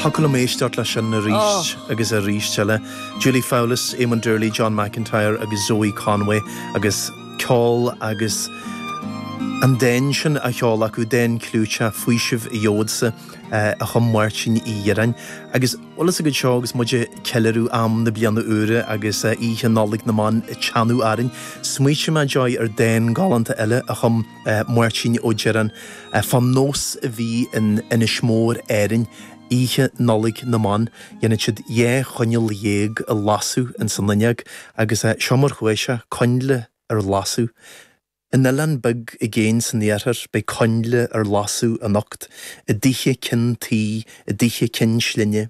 Thiocfadh liom éisteacht leis sin arís agus arís eile. Julie Fowlis, Éamon Doorley, John McIntyre agus Zoë Conway agus ceol agus an dán sin á cheol acu, dán clúiteach, 'Faoiseamh a Gheobhadsa', a chum Máirtín Uí Dhireáin. Agus bhuel, is ag an seó agus muid ag ceiliúradh am na bliana úire agus Oíche Nollag na mBan ag teannadh orainn, smaoitigh mé, Joy, ar dán galánta eile a chum Máirtín Ó Direáin fá nós a bhí in Inis Mór, Árainn, oíche Nollaig na mBan. Dhéanfadh siad dhá choinneal dhéag a lasadh ins an fhuinneog agus seo mar chuaigh sé, coinnle ar lasadh. In oileán beag i gcéin san iarthar beidh coinnle ar lasadh anocht, i dtithe cinn tuí, i dtithe cinn slinne.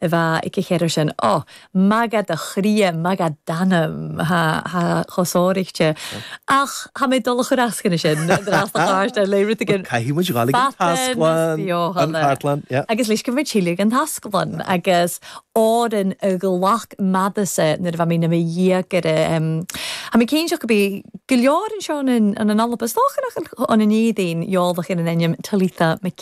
a bheadh aici chéad air sin. Ó, magadh do chroidhe, magadh d'anam, ha, ha, chomh sáraichte. Ach thá mé ag dul a chur asc anois sin, d'fhreastal a thabhairt ar léithreas de gin. Caithfidh muid dhul ag an tasclann, an chartlann, yeah. Agus loisceann muid Síle ag an tasclann agus oireann a ghlac madase nuair a bheidh mé in mo dhiaidh ar a, em, thá mé cinnte go mbeidh go leor anseo an an Alba, is dócha nach an Neidín, eolach ar an ainm Talitha Mc.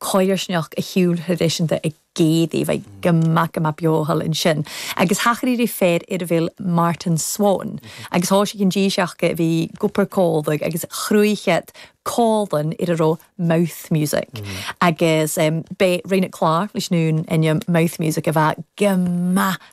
coillearnach a shiúil thraidisiúnta i gcéadtaí bheith go maith, go maith beo thall ansin. Agus thachair idir fir ar a bhfuil Martin Swan agus thoisigh an dís acu a bhí go purcóideach agus chruachead comhlann ar a raibh mouth music. Agus b'é Rena Clarke leis an ainm Mouth Music a bheadh go maith